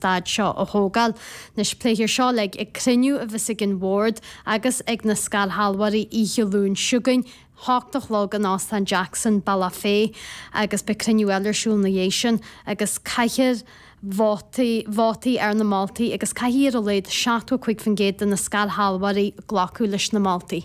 stád seo a thógáil. Anois pléifear seo le ag cruinniú a bheas ag an Bhord agus ag na scairshealbhóirí oíche Luain s'chugainn, a hocht a chlog, in Óstán Jackson, Bealach Féich, agus beidh cruinniú eile ar siúl ina dhiaidh sin, agus caithfear vótaí, vótaí ar na moltaí, agus caithfidh ar a laghad 75% de na scairshealbhóirí glacadh leis na moltaí.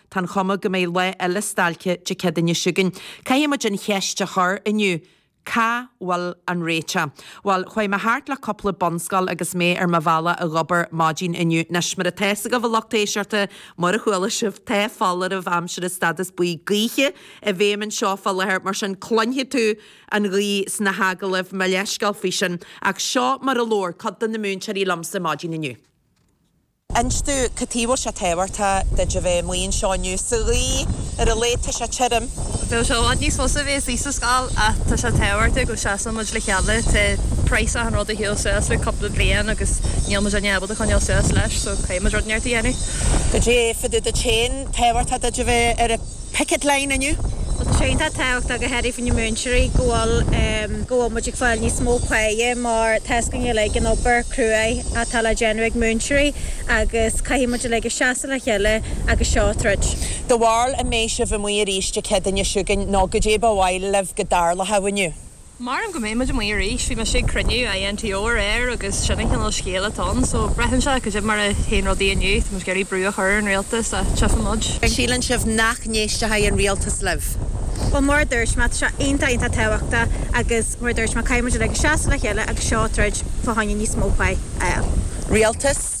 Tá an chuma go mbeidh lá eile stailce Dé Céad seo chugainn. Caithfidh muid an cheist a chur inniu, cá bhfuil an réiteach? Bhuel, chuaigh mé thart le cúpla bunscoil agus mé ar mo bhealach a dh'obair maidin inniu. Anois, mur atá fhios agaibh, a lucht éisteachta, mur a chuala sibh, tá foláireamh aimsire, stádas buí gaoithe, i bhfeidhm anseo fá láthair, mar sin cluinfidh tú an ghaoth sna hagallaimh, mo leithscéal faoi sin. Ach seo mar a labhair cuid de na múinteoirí liomsa maidin inniu. inis domh cad tuige bhfuil sé tábhachtach duit a bheith amuigh anseo inniu buíochas le Dia tá sé tirim. Bheadh sé i bhfad níos fusa a bheith istigh sa scoil ach tá sé tábhachtach go seasann muid le chéile. Tá praghas achan rud ag gabháil suas le cúpla bliain agus níl muid in ann ábalta coinneáil suas leis so caithfidh muid rud inteacht a dhéanamh. Goidé fá dtaobh duit féin, tábhachtach duit a bheith ar an. picket line inniu. Tá sé iontach tábhachtach go n-éirí faoi na múinteoirí go bhfuil go bhfuil muid ag fáil níos mó pá mar tá a fhios againn uilig an obair cruaidh atá le déanamh ag múinteoirí agus caithfidh muid uilig a seasamh le chéile agus seo a troid. Do bharúil an mbeidh sibh amuigh arís Dé Céadaoin seo chugainn nó goidé ba mhaith libh go dtarlódh amuigh inniu. Measaim go mbeidh muid amuigh arís, bhí mise ag cruinniú INTO aréir agus sin an chineál scéil atá ann, so braitheann sé goidé mar a théann rudaí inniu, tá muid ag iarraidh brú a chur ar an rialtas so tchífidh muid. An síleann sibh an n-éistfidh an rialtas libh? Bhuel, mar a dúirt mé, tá sé iontach iontach tábhachtach agus mar a dúirt mé, caithfidh muid uilig seasamh le chéile agus seo a throid fá choinne níos mó pá a fháil. Rialtas?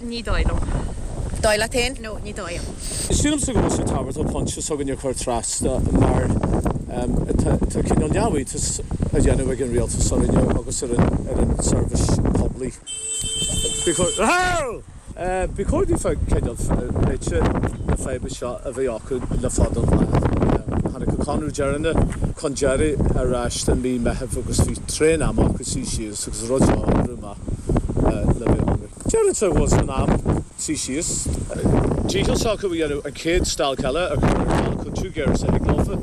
Ní dóigh liom. Dóigh leat féin? No, ní dóigh liom. Sílim go bhfuil sé tábhachtach pointe s'againne a chur trasna mar tá cineál neamhiontas á dhéanamh ag an rialtas orainne agus ar an tseirbhís poiblí. Ba chóir daofa cineál réiteach na faidhbe seo a bheith acu le fada an lá. Tháinig an conradh deireanach chun deiridh ar ais i mí Meithimh agus bhí tréan ama acu suí síos agus an rud seo a oibriú amach le mí Eanáir. Déarfainn so bhfuil sé in am suí síos. dícheall s'acu a dhéanamh an chéad stailc eile a chur ar ceal chomh gasta is a thig leofa.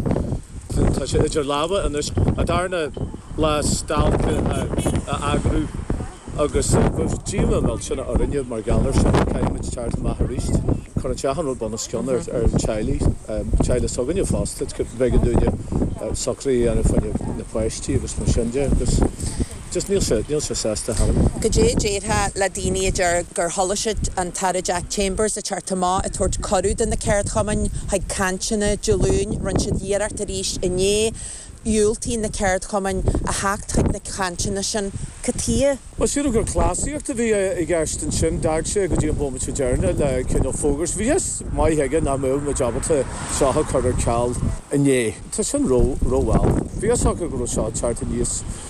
Tá sé idir lámha anois an darna lá stailce a eagrú agus bheadh díomá millteanach orainne mar gheall air sin. Caithfimid teacht amach aríst. Cuireann sé achan rud bunoscionn ar na teaghlaigh, teaghlaigh s'againne fosta, b'éigean dúinne socruithe a dhéanamh faoi na páistí agus mar sin de agus. Just níl sé, níl sé sásta tharam. Cad é a déarfá le daoine a deir gur thoiligh siad an tAire Jack Chambers a teacht amach ag tabhairt cuireadh do na ceardchumainn chuig cainteanna Dé Luain, rinne siad iarracht arís inné, dhiúltaigh na ceardchumainn a theacht chuig na cainteanna sin. Cothaíodh. Sílim gur cleasaíocht a bhí i gceist ansin, d'fhág sé go dtí an bómaite deireanach le cineál fógra. Bhí a fhios maith aige nach mbeadh muid ábalta seo a chur ar ceal inné. Tá sin rómhall. Bhí a fhios acu go raibh seo ag teacht aníos.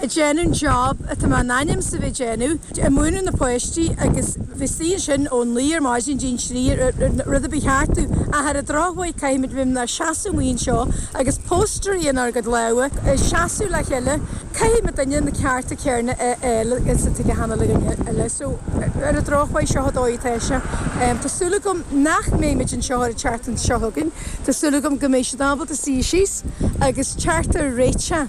a déanann job atá muid in ainm is a bheith ag déanamh ag múineadh na páistí agus bheith istigh ansin ón naoi ar maidin dtí'n trí ar rud a bhí thart tú ach ar an drochuair caithfimid bheith inár seasamh amuigh anseo agus póstairí in ár gcuid lámha ag seasamh leath eile caithfimid duine na cearta céarna a fháil agus a tuigeadh cheana le dhuine eile so ar an drochuair seo an dóigh atá sé tá súil agam nach mbeimid anseo arís an tseachtain seo chugainn tá súil agam go mbeidh siad ábalta suí síos agus é a fháil réitithe.